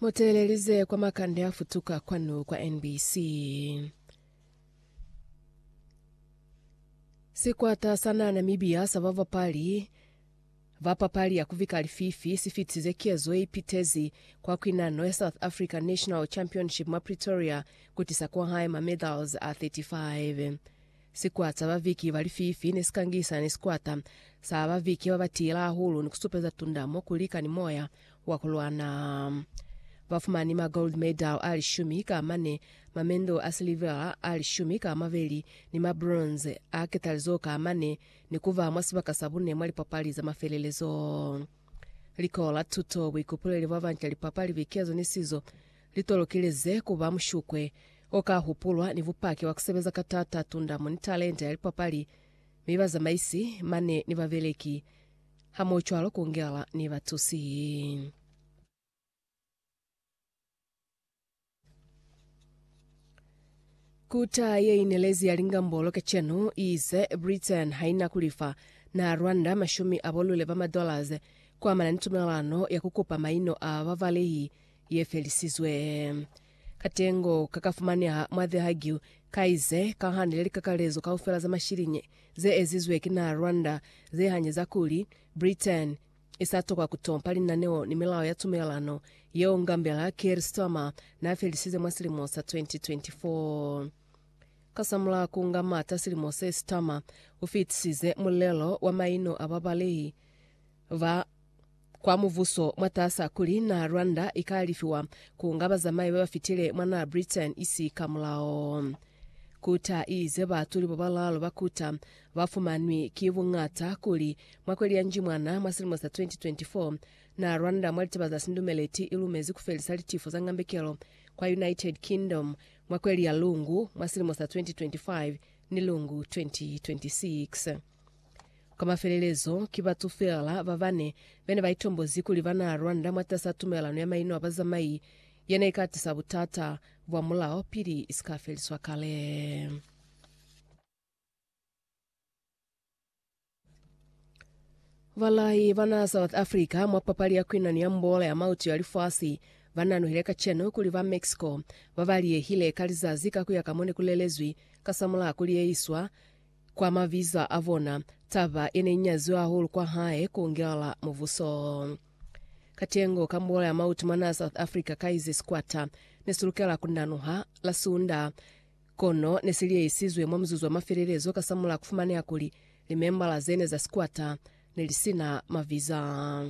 Muteelelize kwa makande a futuka kwanu kwa NBC. Sikwata sa na Namibia sa babapali ba papali ya kuvika lififi si fitisize kezo ye ipitezi kwa kwinano ya South Africa National Championship mwa Pretoria kutisa kwahae ma medals a 35. Sikwata sa baviki ba lififi ne si kangisana ni sikwata sa baviki ba ba tiila hahulu ni ku supeza tunda mo ku lika ni moya wa ku lwana. Ba fumani ma gold medal a lishumi ka mane, ma mendo a silivera a lishumi ka mabeli, ni ma bronze a ketalizo ka mane, ni ku ba mwa sibaka sa bune mwa lipapali za mafelelezo. Liko la tuto, buikupuleli bwa banca, lipapali, bikezo ni sizo, Li tolokelize ku ba mushukwe o ka hupulwa ni bupaki bwa ku sebeza ka t'ata tundamo ni talenta ya lipapali, mi bazamaisi ba ne ni babeleki hamohocwalo ku ngela ni batusi. Kuta ye inelezi ya lingambolo kacenu iize Britain haina kulifa na Rwanda mashumi a bolule ba madollars kuamana ni tumelano ya kukupa maino a bavalehi ye felisizwe. Katengo ka ka fumaneha mwa The Hague ka ize, Ka hande le likakalezo kaufela za mashilinyi ze ezizwe ki naha Rwanda ze hanyeza kuli, Britain i sa tokwa ku tompa linaneo ni milao ya tumelelano yeo Ngambela Keir Starmer n'a felisize mwa silimo sa 2024. Kasamulaho ku nga mata silimo se, Starmer u fitisize mulelo wa maino a babalehi ba kwa muvuso mwatasa kuli naa Rwanda ikalifiwa ku nga bazamai babafitile mwa naa Britain isi ka mulao. Kuta iize baatuli babalaalu ba kuta bafumanwi ki buñata kuli mwa kweli ya Njimwana mwa silimo sa 2024, naa Rwanda mwa litaba za sindumeleti ilumezi kufelisa litifo za ngambekelo kwa United Kingdom mwa kweli ya Lungu mwa silimo sa 2025 ni Lungu 2026. Kwa mafelelezo, ki batu feela ba bane be ne ba itombozi kuli ba naa lwanda mwatas'a tumelelano ya maino a bazamai ye ne i ka tisa butata bwa mulao pili i si ka feliswa kale. Balai ba naa South Africa mwa papali ya kuinani ya mbola ya mautu ya lifasi ba nanuhile kacenu kuli ba Mexico ba ba liyehile ka lizazi ka ku ya ka mo ne ku lelezwi kasamulaho kuli ye iswa Kwa mabizo a bona, taba ye ne inyaziwe hahulu kwa hae ku ngela mubuso. Katengo ka muolo ya mautu mwanaa South Africa Kaize Sikwata ne si lukela ku nanuha la Sunda, kono ne si liyeisizwe mwa muzuzu wa mafelelezo kasamulaha ku fumaneha kuli limembala ze ne za sikwata ne li si na mabizo a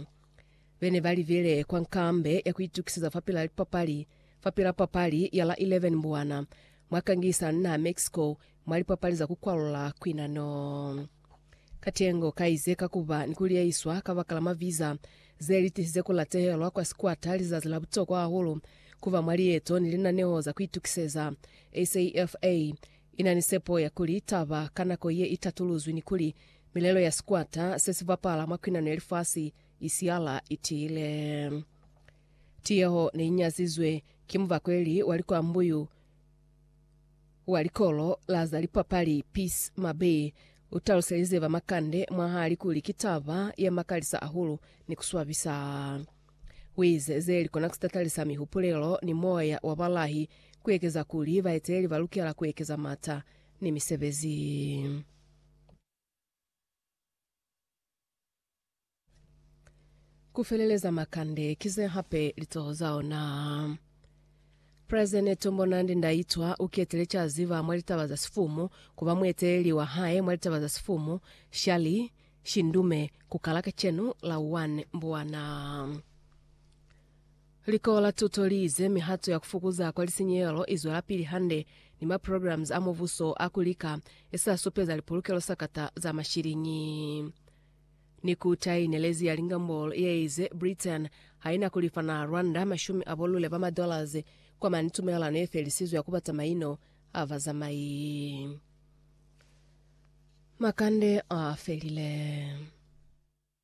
be ne ba libile kwa nkambe ya ku itukiseza fapil'a lipapali fapil'a papali ya la 11 Mbwana mwa kangisano ni naha Mexico mwa lipapali za ku kwalula kwinano. Katengo ka ize ka ku ba ni ku liyeiswa kabakala mwa viza ze li tisize ku latehelwa kwa sikwata lizazi la butokwa hahulu ku ba mwa lieto ni linaneho za ku itukiseza. SAFA i na ni sepo ya kuli taba ka nako ye i tatuluzwi ni kuli milelo ya sikwata se si bapala mwa kwinano ya lifasi i siala i tiile. Tiyeho ne i nyazizwe ki mubakweli wa likwambu yu. Wa likolo la za lipapali Peace Mabee u taluselize ba Makande mwahali kuli ki taba ya makalisa hahulu ni ku swabisa. Wize ze likona ku sitatalisa mihupulelo ni moya wa balahi ku ekeza kuli baeteleli ba lukela ku ekeza mata ni misebezi. Ku feleleza makande ki ze hape litoho za ona. Presidene Tombonandi Ndaitwa u ketile ca ziba mwa litaba za sifumu ku ba mueteleli wa hae mwa litaba za sifumu, Shali, Shindume, ku kala kacenu la 1 Mbwana. Likolo la tuto li ize mihato ya ku fukuza kwa lisinyehelo i zwelapili hande ni maprograms a Mubuso a ku lika e sa supeza lipulukelo sakata za mashiliñi. Ni kuta ye inelezi ya lingambolo ye ize Britain ha i na ku lifa na Rwanda mashumi a bolule ba madollars kwa mane tumelelano ye felisizwe ya ku bata maino a bazamai. Makande a felile.